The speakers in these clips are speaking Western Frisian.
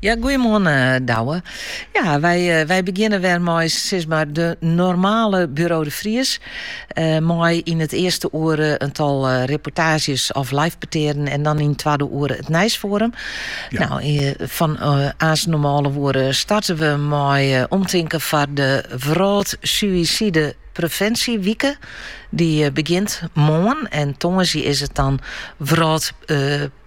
Ja, goeiemoarn Douwe. Ja, wy, wy begjinne wer mei, sis mar de normale Bureau de Vries, mei yn it earste oere in tal reportaazjes of live petearen en dan yn it twadde oere it nijsfoarum. Ja. Nou, fan ús normale oere starte we mei omtinken foar de Wrâld Suïsidepreventsjewike. Dy begjint moarn en tongersdei, is it dan Wrâld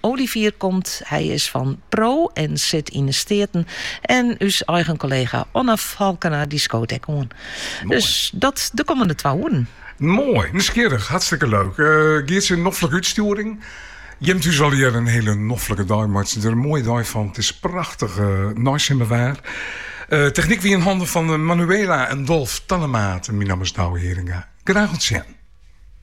Olivier komt, hy is fan PRO en sit yn 'e Steaten, en ús eigen kollega Onno Falkena dy skoot ek oan. Dus dat de kommende twa oeren. Moai, nijsgjirrich, hartstikke leuk. Geertsje, noflike útstjoering. Jim thús allegearre in hiele noflike dei, meitsje der in moaie dei fan, it is prachtige neisimmerwaar. Technyk wie yn hannen fan Manuela en Dolf Tannemaat en myn namme is Douwe Heringa. Graach oant sjen.